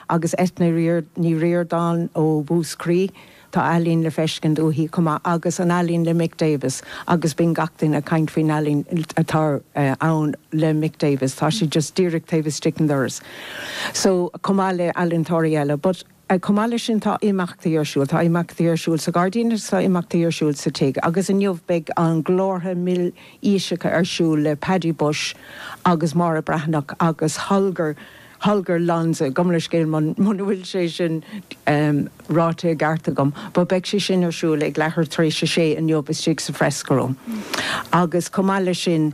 agus Eithne Ní Ríordáin ó Mhúscraí, tá ealaíon le feiscint uaithi chomh maith, agus an ealaín le Mick Davis, agus bíonn gach duine ag caint faoin ealaín atá ann le Mick Davis, tá sé just díreach taobh istigh an doras. So, chomh maith le ealaintóirí eile, but chomh maith le sin tá imeachtaí ar siúl, tá imeachtaí ar siúl sa ghairdín agus tá imeachtaí ar siúl sa tigh, agus inniu beidh an Glórtha Míle Físeanna ar siúl le Paddy Bushe agus Máire Breathnach agus Holger, Holger Lonze, gabh mo leithscéal, muna bhfuil sé sin ráite i gceart agam, but beidh sé sin ar siúl ag leathuair tar éis a sé inniu istigh sa Fresco Room. Agus chomh maith le sin,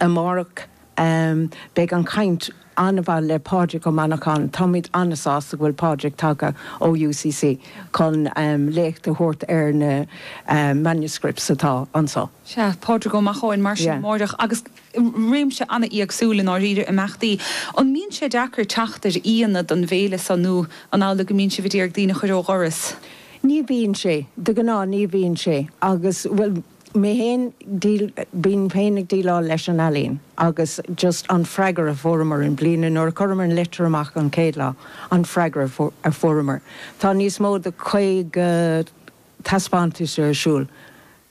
amárach beidh ana-chaint, an-mhaith le Pádraig Ó Macháin. Táimid an-sásta go bhfuil Pádraig tagtha ó UCC chun léacht a thabhairt ar na manuscripts atá anso. Sea, Pádraig Ó Macháin, mar sin, amárach. Agus réimse an-éagsúil i ndáiríre, imeachtaí. An mbíonn sé deacair teacht ar aíonna don bhféile seo nó an amhlaidh go mbíonn sibh ag iarraidh daoine a chur ó dhoras? Ní bhíonn sé, de ghnáth ní bhíonn sé agus, bhuel, mé féin, bím féin ag déileáil leis an ealaíon agus just an freagra a fuaireamar i mbliana, nuair a chuireamar an litir amach an chéad lá, an freagra a fuaireamar, tá níos mó ná 50, taispeántais ar siúl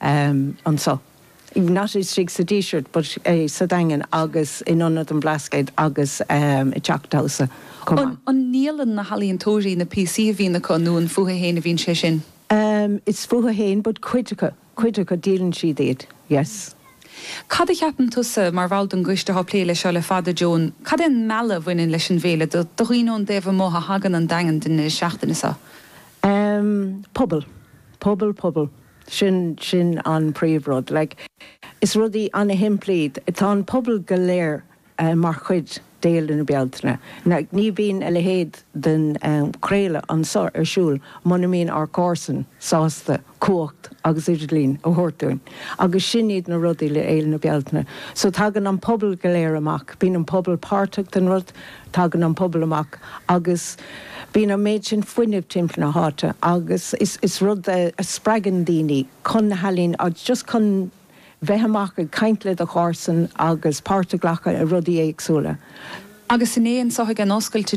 anseo, not istigh sa Díseart but sa Daingean agus in Ionad an Bhlascaoid agus i dTeach Damhsa chomh maith. An ndíolann na healaíontóirí na píosaí a bhíonn acu nó an fúthu fhéin a bhíonn sé sin? Is fúthu fhéin but cuid acu, cuid acu díolann siad iad, yes. Cad a cheapann tusa, mar bhall den gcoiste atá ag plé leis seo le fada, Joan, cad é an mealladh a bhaineann leis an bhféile do dhaoine ón dtaobh amuigh a thagann 'on Daingean don deireadh seachtaine seo? Em. pobal. Pobal, pobal. Sin, sin an príomhrud. Like, is rudaí ana-shimplí, tá an pobal go léir mar chuid d'Fhéile na Bealtaine. Like, ní bhíonn a leithéid den, em, craoladh anseo ar siúl muna mbíonn ár gcomharsain sásta. cumhacht agus idirlín a thabhairt dúinn agus sin iad na rudaí le Féile na Bealtaine. So tagann an pobal go léir amach, bíonn an pobal páirteach den rud, tagann an pobal amach agus bíonn an méid sin fuinnimh timpeall na háite agus is rud a spreagann daoine chun na healaíne agus just chun bheith amach ag caint le do chomharsain agus páirt a ghlacadh i rudaí éagsúla. Agus inné ansan a tháinig an oscailt,